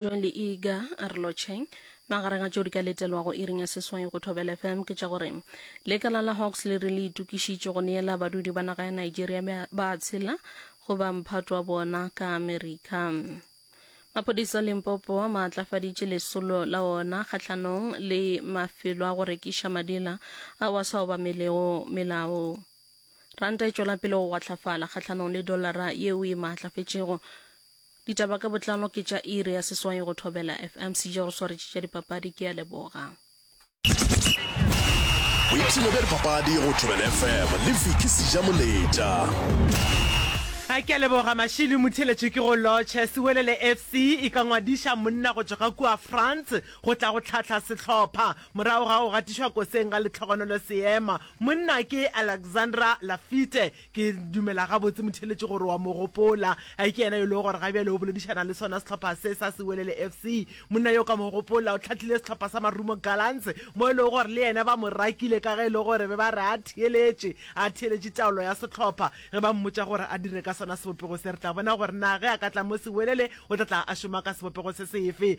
John le Iga a re lotšheng magareng a tšeo di ka letelwago iring ya seswai go thobela fm ke tša gore lekala la hawks le re le itokišitše go neela badudi ba naga ya nigeria ba ba tshela go ba mphato wa bona ka amerika maphodisa limpopo a maatlafaditše lesolo la ona kgahlanong le mafelo a go rekiša madila ao a sa obamelego melao ranta e tšwela pele go gwatlafala kgahlanong le dollara yeo e maatlafetšego Ditaba ka botlalo ke tša iri ya seswai go Thobela FM. Sije go swaretše tša dipapadi ke a leboga. Boipshino bja dipapadi go Thobela FM le Vicky Sija Moleta. A ke a leboga Mashilo Motheletšo ke go lotšhe. Sewelele FC e ka ngwadiša monna go tšwa ka kua France go tla go tlhahla sehlopha morago ga go gatišwa koseng ga letlhogonolo seema. Monna ke Alexandra Lafitte Ke dumela gabotse, Motheeletši, gore o a mo gopola. A e ke yena yo e lego gore ga bjale o boledišana le sona sehlopha se sa Sewelele FC? Monna yo o ka mo gopola, o hlahlile sehlopha sa Marumo Gallants, mo e lego gore le yena ba mo rakile ka ge e le gore be ba re a theeletše, a theeletše taolo ya sehlopha. Ge ba mmotša gore a dire ka sona sebopego se, re tla bona gore na ge a ka tla mo Sewelele o tla tla a šoma ka sebopego se sefe.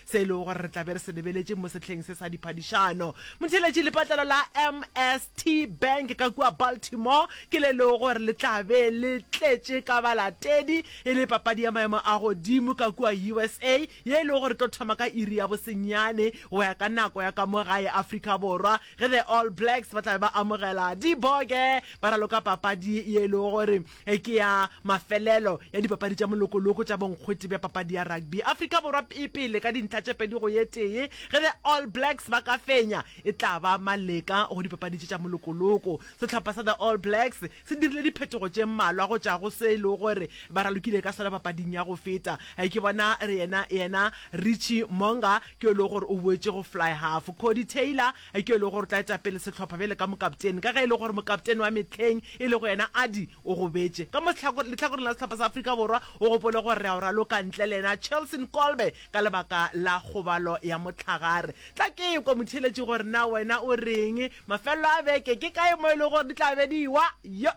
se e lego gore re tla be re se lebeletše mo sehleng se sa diphadišano. Motheeletši lepatlelo la MST Bank ka kua Baltimore ke le lego gore le tla be le tletše ka balatedi e le papadi ya maemo a godimo ka kua usa ye e lego gore e tlo thoma ka iri ya bosenyane go ya ka nako ya ka mo gae Afrika Borwa ge the All Blacks ba tla be ba amogela Diboge ba raloka papadi ye e lego gore e ke ya mafelelo ya dipapadi tša molokoloko tša bonkgwete bja papadi ya rugby. Afrika Borwa e pele ka dintlha tše pedi go ye tee. Ge the All Blacks ba ka fenya, e tla ba maleka go dipapadi tše tša molokoloko. Sehlopha sa the All Blacks se dirile diphetogo tše mmalwa go tšwa go se e lego gore ba ralokile ka sona papading ya go feta. Ke bona re yena yena Richie Mo'unga ke yo e lego gore o boetše go fly-half. Codie Taylor Eupša e le gore o tla eta pele sehlopha bjale ka mokapteni, ka ge e le gore mokapteni wa mehleng e lego yena Ardie o gobetše. Ka mo lehlakoreng la sehlopha sa Afrika Borwa, o gopole gore re a o raloka ntle le yena Chelsin Kolbe ka lebaka la kgobalo ya mohlagare. Tla ke ekwe motheeletši gore na wena o reng. Mafelelo a beke ke kae mo e lego gore di tla be di ewa? Yo!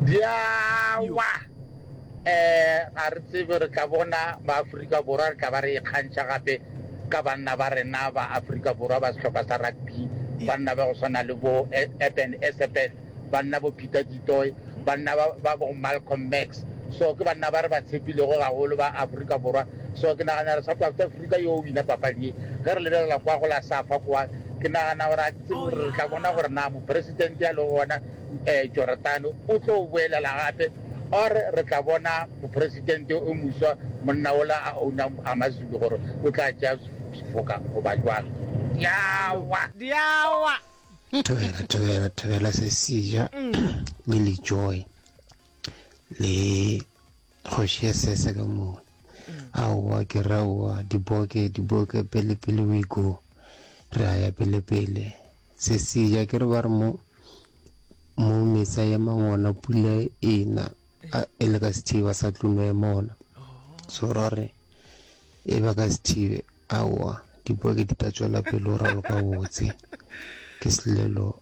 Di a wa! Um, ga re tsebe re tla bona ba-Afrika Borwa re tla ba re ikgantšha gape ka banna ba rena ba Afrika Borwa ba sehlopha sa rugby, banna ba go swana le bo Eben Etzebeth, banna bo Peter du Toit, banna ba bo Malcolm Max. So ke banna ba re ba tshepilego gagolo ba Afrika Borwa. So ke nagana gore South Africa yo o wina papadi ye. Ge re lebelela kwa go la Safa kwa, ke nagana gore Re tla bona gore na moporesitente a lego gona um Joratane o tlo boelela gape or re tla bona moporesitente o moswa monna ola a ownang Amazulu gore o tla tšea sefoka goba jwang. Diawa! Diawa! Thobela, thobela, thobela se seja mm. le le joy le Kgoši ya sese ka moo. Aowa ke re aowa, diboke, diboke, pele pele we go. Re a ya pele pele. Sesija ke re ba re mo mo metsa ya mangona pula ena a- e le ka sethiba sa tluno ya mona. So ra re e ba ka sethibe aowa diboke di tla tswela pele o raloka botse. Ke selelo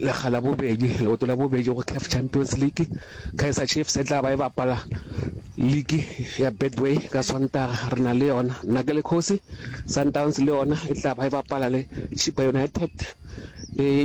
lekga la bobedi leoto la bobedi go caf champions league kaiser chiefs e tla ba e bapala league ya betway ka swantara re na le yona nna ke le kgosi sundowns le yona e tla ba e bapala le chipa united e